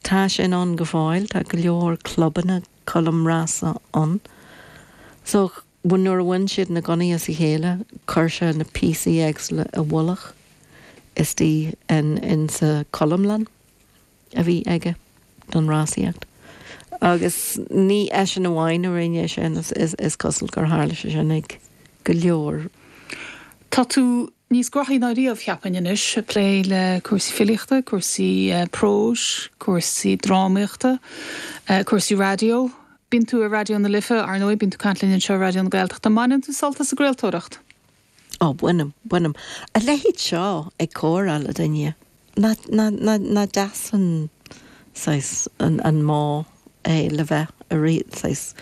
Tá sin ann go fóill. Tá go leor clubanna colm rása ann. So, bhuel nuair a bhain siad na gunnaí as a chéile, chuir sé na píosaí éagsúla i bhfolach istigh in, insa cholmlann a bhí aige don rásaíocht. Agus ní eisean amháin a rinne é sin, is, is, is cosúil gur tharla sé sin ag go leor. Tá tú. Níos gnóthaí ná riamh, cheapfainn, anois, ag plé le cúrsaí filíochta, cúrsaí próis, cúrsaí drámaíochta, cúrsaí raidió. Bíonn tú ar Raidió na Life, ar ndóigh, bíonn tú ag caint linn anseo ar Raidió na Gaeltachta. An mbaineann tú sult as an gcraoltóireacht? Á, bainim, bainim. A leithéid seo, ag comhrá le duine. Nach deas an saghas an modh é le bheith ar saghas.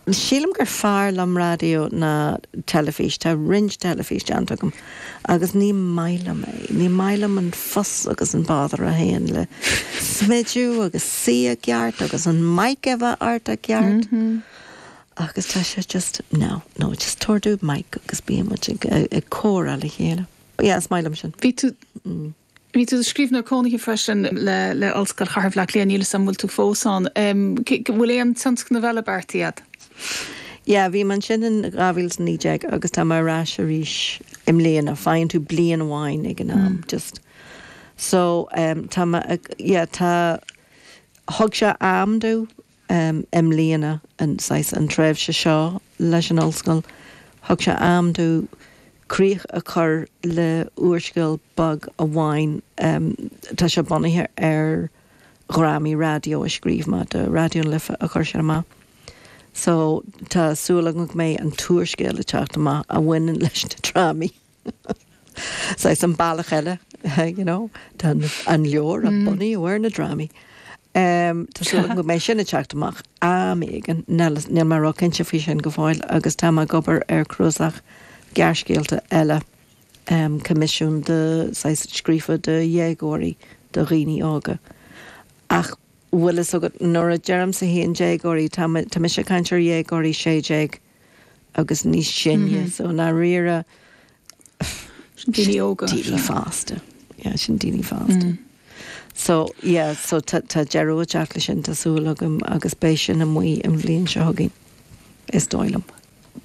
Sílim gur fearr liom raidió ná teilifís. Tá roinnt teilifís déanta agam agus ní maith liom é. Ní maith liom an fuss agus an bother a théann le smidiú agus suí i gceart agus an mic a bheith ort i gceart. Agus tá sé just, no, no, just tabhair domh mic agus bíonn muid ag comhrá le chéile. Yeah, is maith liom sin. Bhí tú Bhí tú scríbhneoir cónaithe freisin le le Ollscoil Chathair Bhaile Átha Cliath, níl 'fhios a'm an bhfuil tú fós ann. An bhfuil aon tionscnamh eile beartaithe agat? Yeah, bhí mé ansin in 2019 agus tá mé ar ais arís i mbliana. Faigheann tú bliain amháin ag an am, just. So, tá mé ag, yeah, tá, thug sé am domh I mbliana, saghas an tréimhse seo leis an Ollscoil, thug sé am domh críoch a chur le úrscéal beag amháin. Tá sé bunaithe ar dhrámaí raidió a scríobh mé do Raidió na Life a chuir siad amach. So, tá súil agam go mbeidh an t-úrscéal ag teacht amach a bhaineann leis na drámaí. Saghas an bealach eile you know, tá an leabhar bunaithe ar na drámaí. Um, Tá súil agam go mbeidh sin ag teacht amach am éigin níl mé róchinnte faoi sin go fóill agus tá mé ag obair ar cnuasach gearrscéalta eile um, coimisiún de shaghas scríofa do dhéagóirí do dhaoine óga. Ach bhfuil a fhios agat nuair a deirimse déagóirí tá mé- tá mise ag caint ar dhéagóirí 16 agus níos sine so i ndáiríre Sin daoine óga. daoine fásta yeah sin daoine fásta so yeah so tá tá deireadh ag teacht leis sin tá súil agam agus beidh sin amuigh an bhliain seo chugainn is dóigh liom.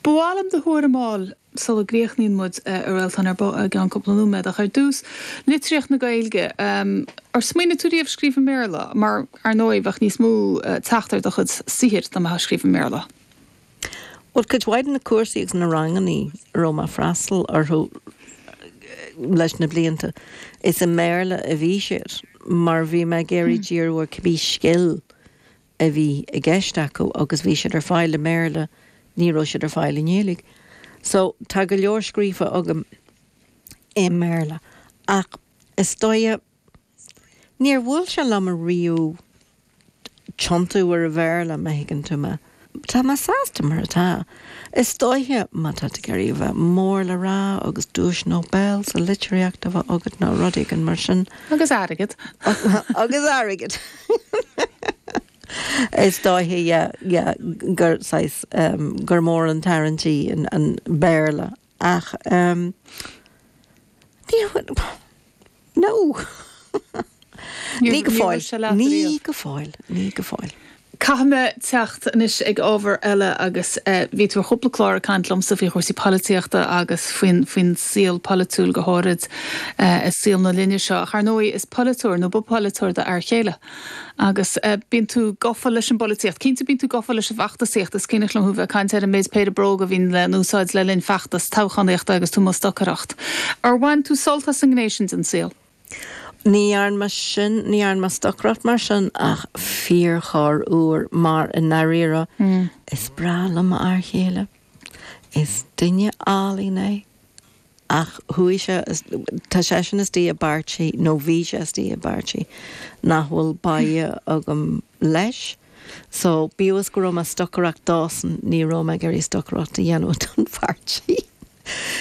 Ba mhaith liom do thuairim a fháil sula gcríochnaíonn muid a Réaltán ar ball i gceann cúpla nóiméad ach ar dtús, litríocht na Gaeilge. Ar smaoinigh tú riamh scríobh i mBéarla? Mar, ar ndóigh, bheadh níos mó teacht ar do chuid saothair dá mbeifeá ag scríobh i mBéarla. Bhuel, cuid mhaith de na cúrsaí agus na ranganna a raibh mé ag freastal orthu leis na blianta, is i mBéarla a bhí siad mar bhí mé ag iarraidh díriú ar cibí scil a bhí i gceist agam agus bhí siad ar fáil i mBéarla, ní raibh siad ar fáil i nGaeilge. So, tá go leor scríofa agam i mBéarla ach is dóiche, Níor bhuail sé liom riamh tiontú ar an Bhéarla, má thuigeann tú mé. Tá mé sásta mar atá. Is dóiche, má tá tú ag iarraidh a bheith mór le rá agus duais Nobel sa litríocht a bheith agat nó rud éigin mar sin. Agus airgead. Agus airgead. Is dóiche, yeah, yeah, gur saghas, gur mór an tarraingt í an Béarla. Ach ehm ní no ní go fóill, ní go fóill, ní go fóill. Caithfidh mé teacht anois ag ábhar eile agus eh bhí tú ar chúpla clár ag caint liomsa faoi chúrsaí polaitíochta agus faoin faoin saol polaitiúil go háirid eh i saol na linne seo ach ar ndóigh is polaiteoir nó ba pholaiteoir do fhear céile Agus bíonn tú gafa leis an bpolaitíocht. Cinnte bíonn tú gafa leis an bhfeachtasaíocht. Is cuimhneach liom thú bheith ag caint ar an méid péire bróg a bhíonn le n-úsáid le linn feachtas toghchánaíochta agus tú i mbun stocaireacht. Ar bhain tú sult as an ngné sin den saol? Ní dhearn mé sin, ní dhearn mé stocaireacht mar sin ach fíor chorr uair mar i ndairíre is breá liom m'fhear chéile. Is duine álainn é. Ach chuaigh sé, tá seisean istigh i bpáirtí, nó bhí sé istigh i bpáirtí, nach bhfuil bá agam leis, so bíodh is go raibh mé stocaireacht dósan, ní raibh mé ag iarraidh stocaireacht a dhéanamh don phairtí.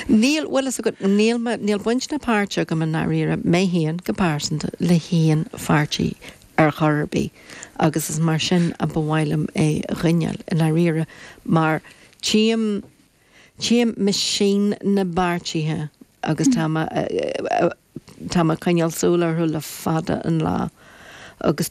Níl, bhfuil fhios agat, níl mé, níl baint ná páirt agam i ndáiríre, mé féin, go pearsanta, le haon pháirtí ar chor ar bith agus is mar sin a ba mhaith liom é a choinneáil, i ndáiríre, mar tchím, Tchím misean na bpáirtithe agus tá mé tá mé ag coinneáil súil orthu le fada an lá agus